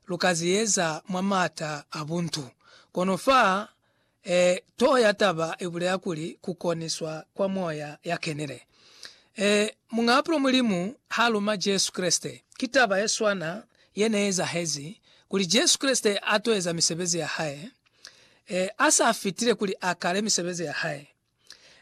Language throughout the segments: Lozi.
lu ka ze eza mwa m'ata a buntu. Kono fa e toho ya taba i bulela kuli ku koniswa kwa Moya ya Kenile. E, Muñaapulo Mulimu ha luma Jesu Kreste, ki taba ye swana ye ne ezahezi, kuli Jesu Kreste a to eza misebezi ya Hae, e, a sa fitile kuli a kale misebezi ya Hae.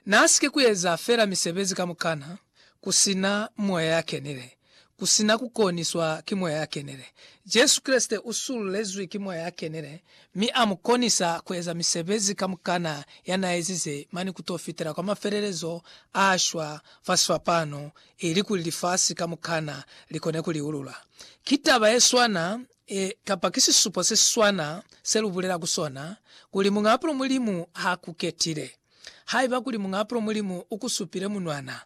N'a si ke ku eza fela misebezi kamukana ku si na Moya ya Kenile, ku si na ku koniswa ki Moya ya Kenile. Jesu Kreste u sululezwi ki Moya ya Kenile, mi a mu konisa ku eza misebezi kamukana ya n'a ezize mane ku t'o fitela kwa mafelelezo a shwa fa sifapano, ilikuli lifasi kamukana li kone ku liulula. Ki taba ye swana E, kapa ki sisupo se siswana se lu bulela ku sona, kuli Muñaapulo Mulimu ha ku ketile. Haiba kuli Muñaapulo Mulimu u ku supile munwana,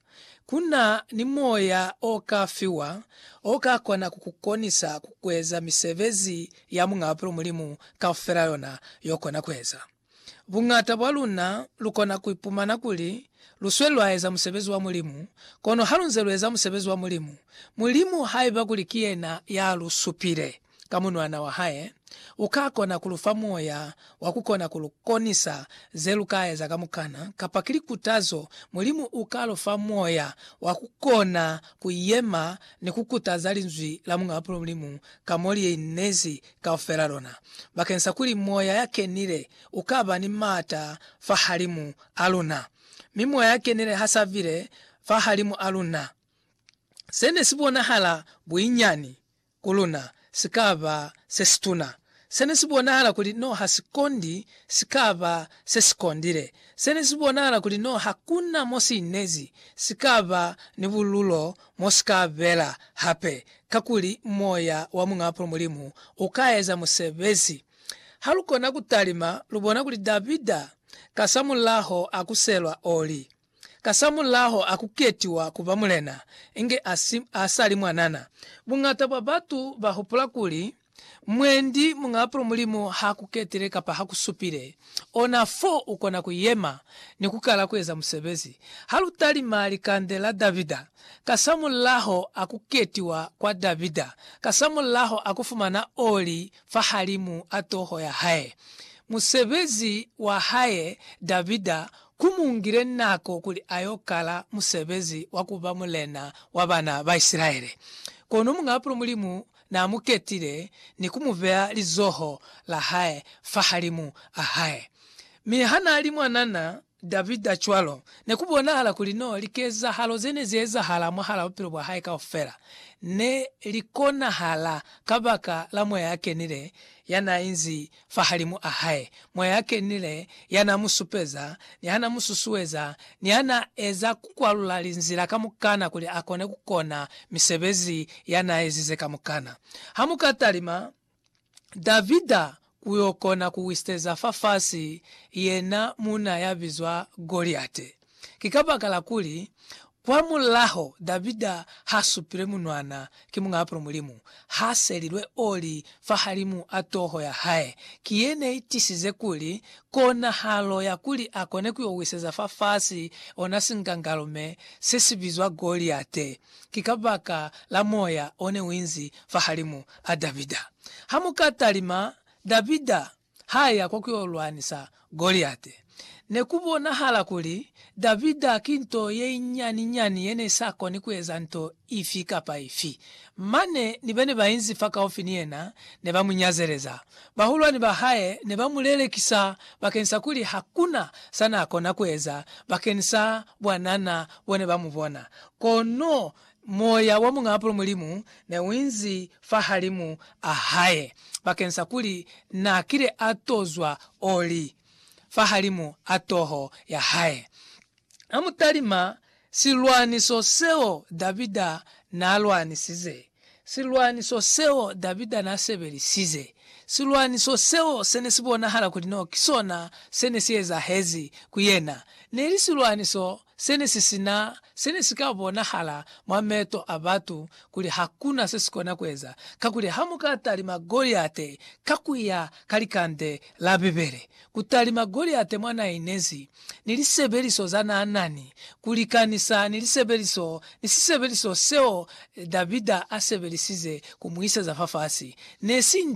ku na ni moya o ka fiwa o ka kona ku ku konisa ku kueza misebezi ya Muñaapulo Mulimu kaufela yona yo kona kueza. Buñata bwa luna lu kona ku ipumana kuli lu sweli lwa eza musebezi wa Mulimu, kono ha lu nze lu eza musebezi wa Mulimu, Mulimu, haiba kuli ki yena ya lu supile ka Munwana wa hae, u ka kona ku lu fa moya wa ku kona ku lu konisa ze lu ka eza kamukana, kapa ki likutazo, Mulimu u ka lu fa moya wa ku kona ku yema ni ku kutaza Linzwi la Muñ'a Mulimu ka mo li inezi kaufela lona, bakeng sa kuli Moya ya Kenile u ka ba ni maata fahalimu a luna. Mi Moya ya Kenile ha sa bile fahalimu a luna, se ne si bonahala buinyani ku luna si ka ba se situna. Se ne si bonahala kuli no ha si kondi si ka ba se si kondile. Se ne si bonahala kuli no ha ku na mo si inezi si ka ba ni bululo Mo si ka bela hape, kakuli moya wa Muñ'a Apulo Mulimu u ka eza musebezi. Ha lu kona ku talima, lu bona kuli Davida kasamulaho a ku selwa oli, kasamulaho a ku ketiwa ku ba mulena, inge a si, a sa li mwanana. Buñata bwa batu ba hupula kuli, Mwendi muñaapulo Mulimu ha ku ketile kapa ha ku supile, ona fo u kona ku yema ni ku kala ku eza musebezi. Ha lu talima likande la Davida, kasamulaho a ku ketiwa kwa Davida, kasamulaho a ku fumana oli fahalimu a toho ya hae, musebezi wa hae Davida ku mu ngile nako kuli a y'o kala musebezi wa ku ba mulena wa bana ba Isilaele. Kono muñaapulo Mulimu Na mu ketile ni ku mu beya lizoho la hae fahalimu a hae. Mi ha na li mwanana Davida cwalo, ne ku bonahala kuli no likezahalo ze ne zi ezahala mwahal'a bupilo bwa hae kaufela ne li konahala kabaka la Moya ya Kenile ya n'a inzi fahalimu a hae, Moya ya Kenile, ya n'a mu supeza, ni ha n'a mu susueza, ni ha n'a eza ku kwalula linzila kamukana kuli a kone ku kona misebezi ya n'a ezize kamukana. Ha mu ka talima Davida ku y'o kona ku wisiteza fafasi yena muuna ya bizwa Goliate. Ki kabakala kuli, kwamulaho Davida ha supilwe munwana ki Muñ'a Apro Mulimu, ha selilwe oli fahalimu a toho ya hae. Ki ye ne i tisize kuli, konahalo ya kuli a kone ku yo wiseza fafasi ona sinkankalume se si bizwa Goliate, ki kabaka la moya o ne u inzi fahalimu a Davida. Ha mu ka talima, Davida ha ya kwa ku yo lwanisa Goliate, ne ku bonahala kuli Davida ki nto ye nyani-nyani ye ne sa koni ku eza nto ifi kapa ifi. Mane ni ba ne ba inzi fakaufi ni yena ne ba mu nyazeleza. Bahulwani ba hae ne ba mu lelekisa bakeni sa kuli ha ku na sa n'a kona ku eza bakeni sa bwanana bo ne ba mu bona. Kono Moya wa Muñ'apolo Mulimu ne u inzi fahalimu a hae, bakeng sa kuli na kile a tozwa o li fahalimu a toho ya hae. A mu talima silwaniso seo Davida n'a lwanisize, silwaniso seo Davida n'a sebelisize, silwaniso seo se ne si bonahala kuli n'o ki sona se ne si ezahezi ku yena. Ne li silwaniso Se ne si sina se ne si ka bonahala mwa meto a batu kuli hakuna se si kona kueza, kakuli ha mu ka talima Goliate ka ku ya ka likande la Bibele, ku talima Goliate mwa na inezi, ni lisebeliso za na nani, ku likanisa ni lisebeliso, ni sisebeliso seo Davida a sebelisize ku mu iseza fafasi, ne si nto